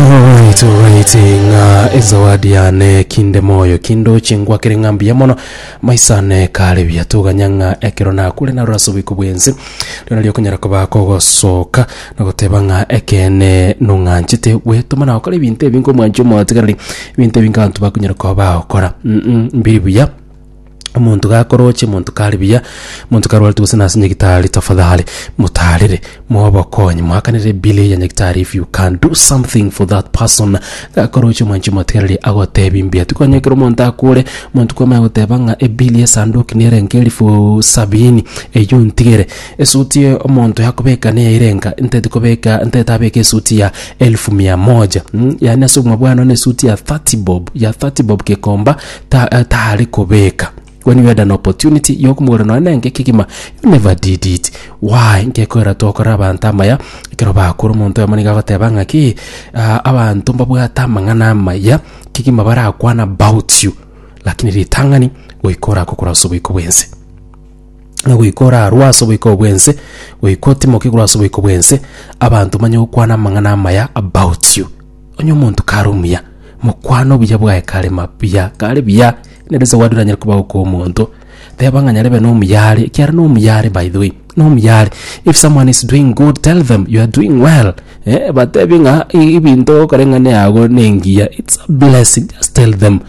Alright, alright, ng'a ezawadi yane kinde moyo kindoche ngwakere ng'a mbuya mono maisane kare buya toganya ng'a ekero nakure narora ase oboiko bwense rero nario okonyara koba kogosoka na goteba ng'a ekeene nong'anchete gwetoma na gokora ebinto ebi ngomwancha omotigareri ebinto ebi ng'abanto bakonyara koba bagokora mm mbiri buya Omonto gakoroche, omonto kare buya, omonto karwarete gose nase nyagitari, tafadhali motarere, mobokonye, moakanere bili ya nyagitari if you can do something for that person. Gakoroche omwanchi omotegereri agotebi mbuya. Tikwanya ekero omonto akore, omonto kwamanya goteba ng'a ebili y'esanduki nere nka elifu sabini, eyio ntigere. Esuti ya omonto yakobeka neye ere nka, ntete kobeka, ntete abeke esuti ya elfu mia moja, mm yaani ase obogima bwane one esuti ya thirty bob, ya thirty bob gekomba. ta- eh, tare kobeka when you had an opportunity yokumogora nonye nenge kegima you never did it why ngekorera tokora abanto amaya ekero bakura omonto oyomo nigo agoteba ng'aki ah, abanto mbabwate amang'ana amaya kegima barakwana about you lakini ritang'ani goika oragokora ase oboiko bwense na goika orarwa ase oboiko bwense goika otimoke korwa ase oboiko bwense abanto banye gokwana amang'ana amaya about you Onye omonto kare omuya, mokwane obuya bwaye kare mabuya, kare buya, nere ase ogwadire anyare koba okw'omonto. Teba ng'a nyarebe nomuya are, ekiagera nomuya are, by the way, nomuya are. If someone is doing good, tell them you are doing well, eh, batebie ng'a ebinto okoreng'ana yago nengiya, it's a blessing, just tell them.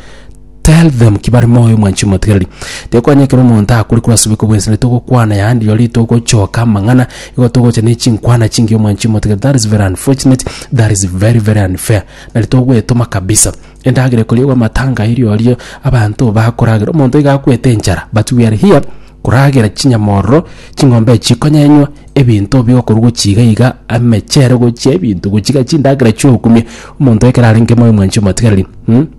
Tell them ki bare moyo mwanchi omotigereri. Tekwanya ekero omonto akure korwa ase oboiko bw'ense, nitogokwana yaani rirorio ritogochoka amang'ana, igo togocha ne chinkwana chingiya mwanchi omotigereri. That is very unfortunate, that is very very unfair. Na ritogoetoma kabisa. Endagera ekoriagwa amatanga aye rirorio abanto bakoragera. Omonto iga akwete enchara but we are here koragera chinyama ororo, ching'ombe echi chikonyenywa, ebinto bigokorwa gochia iga iga, amechere gochia ebinto gochia iga chindagera chiokumia. Omonto ekero arenge moyo mwanchi omotigereri, mh.